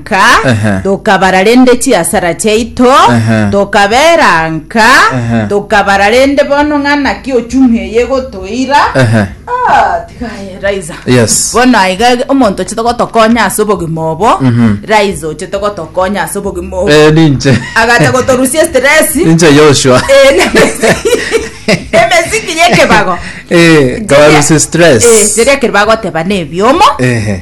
nka, Ehe. tokabara rende chiasara chiaito, Ehe. tokabera nka, Ehe. tokabara rende bono ng'a naki ochumi eye egotoira. Ehe. Ah, tiga aye, Raiza. Yes. bono aiga omonto ochete gotokonya ase obogima obo Mhm. Raiza ochete gotokonya ase obogima obo Eh, ninche. agacha gotorusia stress Ninche Joshua. Eh, emesiki yekebago Eh, kabarusia stress. Eh, riria keri bagoteba na ebiomo Ehe.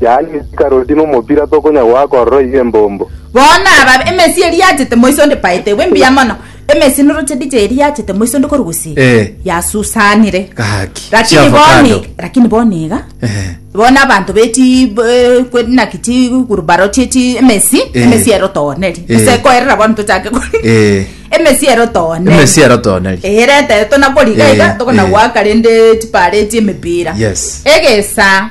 yaani ime chikaroti na omopira tokonya goaka ororo iga embombo. Bono aba emesi eria yachete moiso onde paetegwe mbuya mono, emesi na rochedija eria yachete moiso onde korwa gusii, Eh. yasusanire. Gaki. Lakini Chiafa bono kando. iga- lakini bono iga, Eh. bono abanto be chi eh, kwe- naki chigurubaro chie chi emesi, Eh. emesi ero tooneri. Eh. Gose koerera bono tochake kori. Eh. Emesi ero tooneri. Emesi ero tooneri. Eherete tonakoriga Eh, iga tokona eh. goaka rende chipare chi'emepira. Yes. Egesa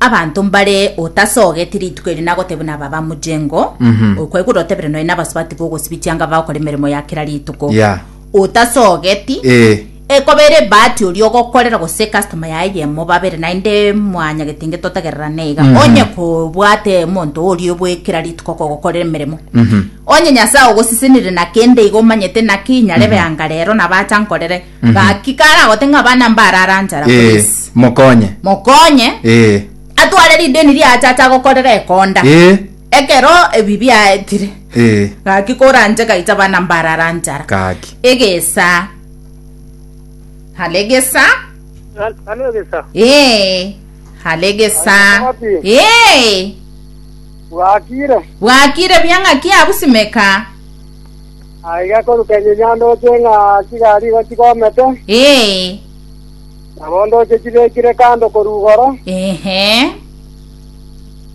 Abanto mbare otasogeti rituko eri nagoteba buna aba bamuchengo, okwegure otebire nonya nabasubati bogosibia chianga bagokora emeremo ya kera rituko. Yeah. Otasogeti. Eh. Ekoba ere ebahati oria ogokorera gose customer yaye eyemo babere naende mwanyagete inge totagererane iga. Onye kobwate omonto oria bwe kera rituko kogokorera emeremo. Onye Nyasae ogosisenire na kende iga omanyete naki inyarebe anga rero nabacha nkorere. Gaki karagote ng'a abana mbarara nchara korwa Ee, ase. mokonye. Mokonye Ee, atware rideni riacha acha gokorera ekonda. ee, Ekero ebi biaetire. ee, Gaki koranche gaicha abana mbarara nchara. gaki. Egesa. Hale egesa. Hano egesa. Ee. Hale egesa. Wapi? Ee. Bwakire. Bwakire bia ng'aki abusimeka. Aiga korukenye nyandooche ng'a chigari igo chigomete, Ee, na bondooche chibekire kando korwa igoro. ehe,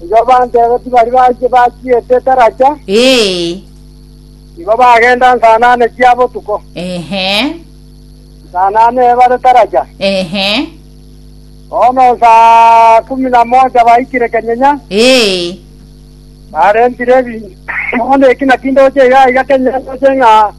Igo abanto abo tibari bache bachiete taracha, ee, igo bagenda nsa nane chia botuko, ehe, nsa nane ebare taracha. ehe, Bono nsa kumi na mocha baikire kenyenya, ee, Barentire ebinto, bono eki naki ndoche iga aiga kenya ndoche ng'a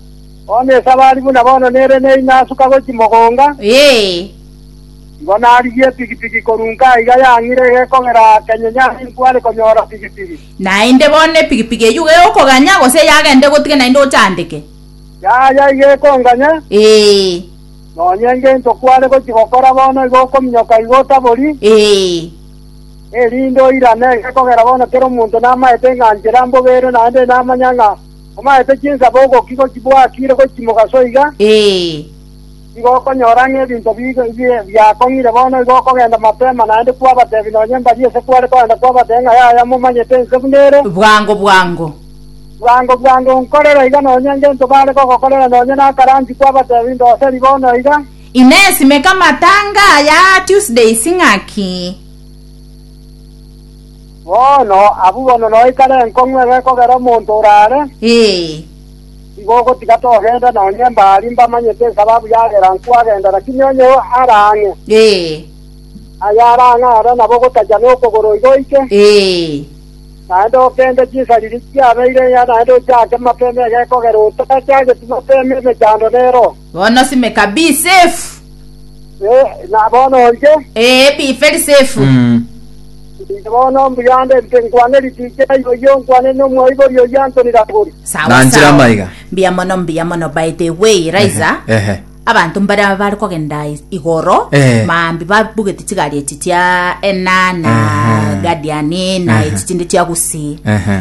bono esabari buna bono nere neyi nasuka gochia mogonga, igo narigia epigipigi korwa inka aiga yang'ire egekogera kenya nyare inkware konyora pigipigi. Naende bono epigipigi eyio iga egokoganya, gose yagenda egotige naende ochandeke? Yaya iga ekonganya, Ee, nonya engento kware gochia gokora bono iga okominyoka iga otabori. ee. erinde oirane, gekogera bono kera omonto namaete ng'a nchera mbobe ere, naende namanya ng'a omaete chinsabo ogoki gochibwakire gochimoka soiga, nigo okonyora ng'a ebinto biakong'ire bono igo okogenda mapema, naende kwabatebia nonye mbari ase kware kogenda kwabatebia ng'a yaya momanyete ense buna ere, bwango bwango nkorera iga nonye ngento bare gogokorera nonye nakaranchi kwabatebia ndoseri bono iga. Inesimeka matanga ya Tuesdays ng'aki? Bono, abwo bono noikare enkong'u ebe ekogera omonto orare, Ee. nigo ogotiga togenda nonye mbari mbamanyete esababu yagera nkwagenda, lakini onye ara ang'e, Ee. aye ara ang'e are nabo ogotacha na okogoro iga oike, Ee. naende okende chinsariri chiabeire enyaga naende ochake mapema ege ekogera otachageti mapema emechando nero. Bono simeka bi safe. Eh, na bono orie. Ee, bi very safe. Mm. Inche bono mbuya ande nte nkwane richiche na yoyo nkwane n'omwaibori oyio Anthony Ragori. Sawa Nanchira sawa. amaiga. Mbuya mono, mbuya mono. By the way, Raiza, Ehe. abanto mbare bare kogenda is- igoro Eh. maambi babugete chigari echi chia enana Ehe. guardian na Ehe. echi chinde chia gusi Ehe.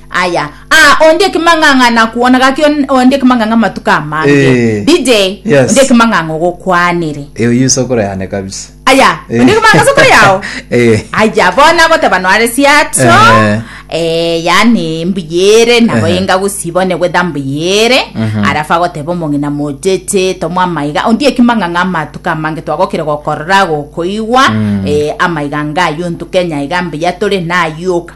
Aya, aa, onde ekemang'ang'a nakuona gaki on- onde ekemang'ang'a amatuko amange Eh. dj Yes. onde ekemang'ang'a ogokwanire Eyo yuso kore yane kabisa. aya Eh. onde ekemang'ang'a sokore yao Eh. aya bona goteba noare siato Eh. eh, yani mbuyere nabo Ehe. enga gusibone gwetha mbuyere Mhm. arafa goteba omong'ina mocheche tomwa amaiga ondi ekimang'ang'a amatuko amange twagokire gokorora gokoigwa Mm. eh, amaiga ngayo ntukenya iga mbuya tore nayuka